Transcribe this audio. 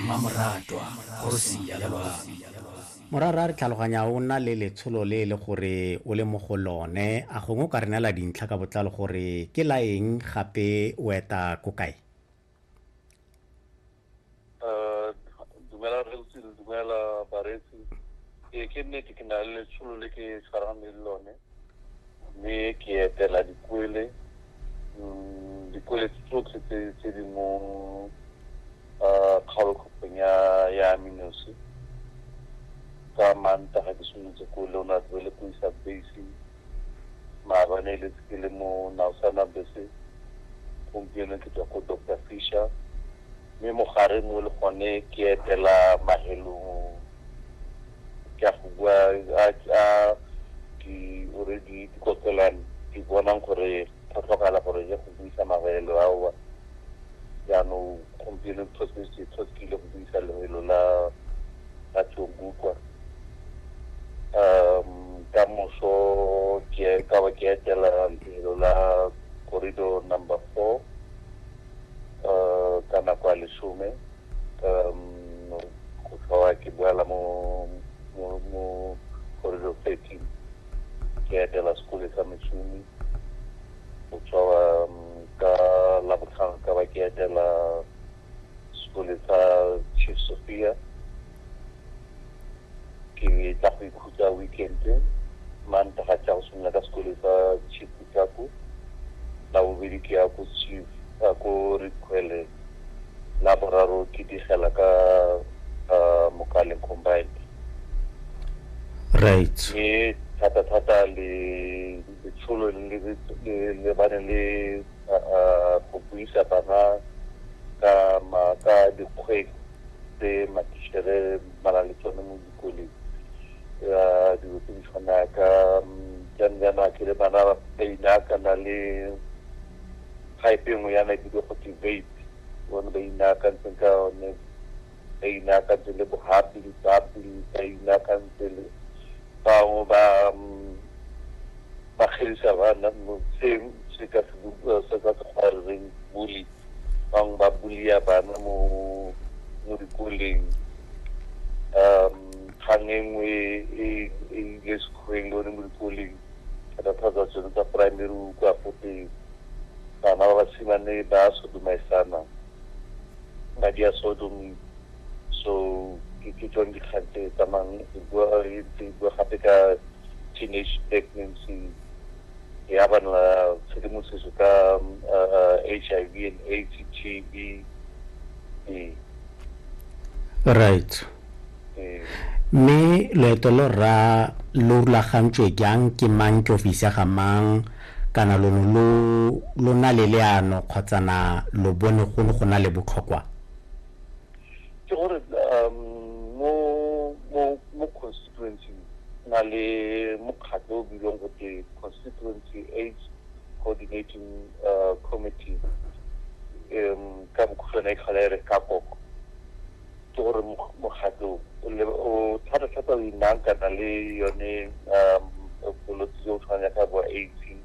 mmamoratwa kgosi ya lwami. Morara re tlhaloganya o nna le letsholo le e le gore o le mo go lone, a gongwe o ka re neela dintlha ka botlalo gore ke la eng gape o eta ko kae? Dumela Rre Ntshidi, dumela bareetsi. Ee, ke nnete ke na le letsholo le ke tshwarang le lone. mme ke etela dikwele mm, dikwele tsotlhe tse di mo ah, kgaolokgopeng ya ya aminosi ka manta ga ke simolotse ko le ona tloe le ko isa base maabane e letse ke le mo naosana bese gompieno ke tswa ko doctor fisher mme mogare mo le gone ke etela mahelong ke a go bua a di ore di dikokelwane di bonang gore go tlhokala gore ye go buisa mabelo ao jaanong gompieno tlhosekile go buisa lebelo la la tsongukwa um ka moso ke ka ba ke etela lebelo la corridor number four um ka nako ya lesome um, go tlhoa ke boela mo mo mo corridor thirteen ke etela sekole sa mešomi go tshwara um, ka labotlhano ka ba ke etela sekole sa chief sophia Ke tla go ikhutsa weekend-e, mantaga ke ya go simolola ka sekolo sa Chief Kutako, labobedi ke ya ko Chief ko Redkhwele, laboraro ke digela ka Mokaleng combined. Right. Mme thata-thata le letsholo le le bane le go buisa bana ka dikgwedi tse matishere ba na le tsone mo dikoleng um dilo tse di tshwana ka jang jana ke le bana ba baina kana le type nngwe yana e bile go te vape bone ba inaakantseng ka one ba inaakantse le bohapi dipapi ba inaakantse le bangwe ba ba kgedisa bana seng se ka se ka se kgwa reng bully bangwe ba bulia bana mo mo dikoleng um kgang e nngwe e, e ile sekgweng le one mo dikoleng thata-thata tsa tsone tsa primary o kwa gote bana ba basimane ba sodomaisana ba dia sodomi so ke ke tsone dikgang tse tsamayng e bua e ntse e bua gape ka teenage pregnancy e abana tshedimosetso ka HIV and AIDS TB ee right ee mme loeto lo rra lo rulagantswe jang ke mang ke ofisi ya ga mang kana lo ne lo lo na le leano kgotsa na lo bone go ne go na le botlhokwa ke gore um mo mo mo constituency na le mokgatlho o bilwang go te constituency aids coordinating uh, committee um ka bokhutshwane e tlhola e re ka koko ke gore mokgatlho o thata thata o inang kana le yone um bolwetse jo o tshwanang ka bo aids